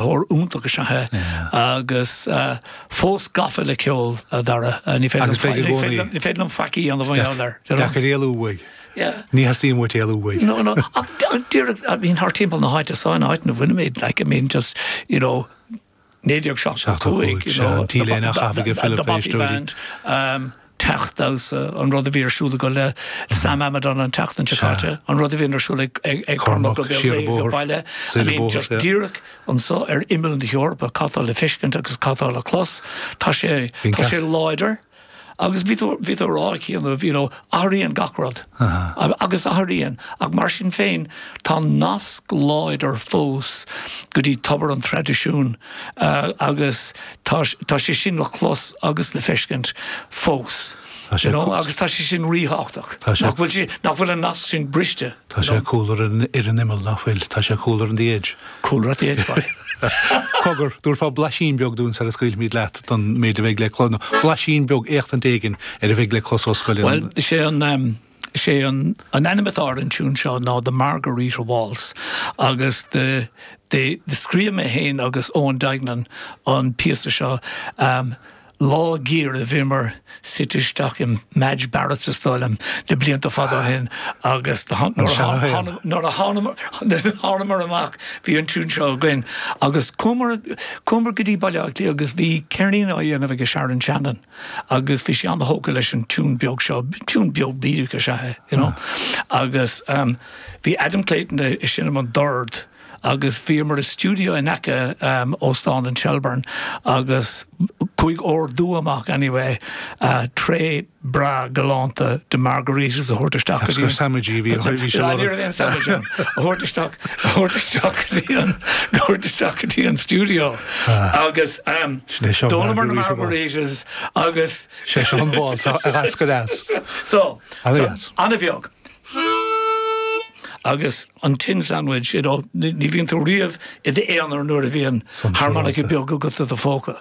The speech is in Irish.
Rud iontach is ea é agus fós gafa le ceol a Dhara. Ní féidir liom faic, ní féidir liom faic a dhéanamh ina gheall air. Deacair é éalú uaidh. Ní theastaíonn uait éalú uaidh. No, no, ach díreach, I mean, thar timpeall na háite san áit ina bhfuilimid, like, I mean, just, you know, 1975, you know, the Bothy Band, teacht damhsa, an rud a bhí ar siúl acu le Sam Amidon an tseachtain seo caite, an rud a bhíonn ar siúl ag Cormac Ó Beaglaoich ag baile, I mean just díreach anseo ar imeall na hEorpa, cad tá le feiscint agus cad tá le clos, tá sé, tá sé láidir. Agus bhí tú, bhí tú ag rá cheana you know, athraíonn gach rud agus athraíonn ach mar sin féin tá nasc láidir fós go dtí tobar an traidisiúin. agus tá sé sin le clos agus le feiscint fós, you know, agus tá sé sin ríthábhachtach. Tá sé. Nach bhfuil sé, nach bhfuil an nasc sin briste. Tá sé cúl ar an, ar an imeall, nach bhfuil, tá sé cúl ar an the edge. Cúl ar the edge, boy. Cogar, tabharfaidh tú blaisín beag dúinn sar a scaoilfimid leat don méid a bheidh le clos, nó blaisín beag éachtaint éigin ar a bheidh le clos ó Scullion. Bhuel, sé an. Is é an an ainm atá ar an tiún seo ná The Margarita Waltz agus the the scríobh mé féin agus Eoin Duignan an píosa seo lá go rabhamar suite isteach i Madge Barretts is dóigh liom na blianta fada ó shin agus An nuair a seanchaí an. tháinig nuair a thánamar amach bhí an tiún seo againn agus chuamar chuamar go dtí Baile Átha Cliath agus bhí ceirnín á dhéanamh aige Sharon Shannon agus bhí sí an-thógtha leis an tiún beag seo, tiún beag bídeach is ea é, you know. Agus ehm bhí Adam Clayton ag seinm an dord agus bhíomar i stiúideo in aice ehm Óstán an Shelbourne agus chuaigh ordú amach anyway eh tray breá galánta de margaritas a thabhairt isteach go dtí an... Agus gur sandwich a bhí ann, bhí sé lárnach. Ní raibh aon sandwich ann. A thabhairt isteach, a thabhairt isteach go dtí an, a thabhairt isteach go dtí an stiúideo. Agus d'ólamar na margaritas agus sé seo an waltz seo a d'eascair as. So, an-bheag. Agus an tin sandwich, you know, ní bhíonn tú riamh i d'aonar nuair a bhíonn harmonica beag agat i do phóca.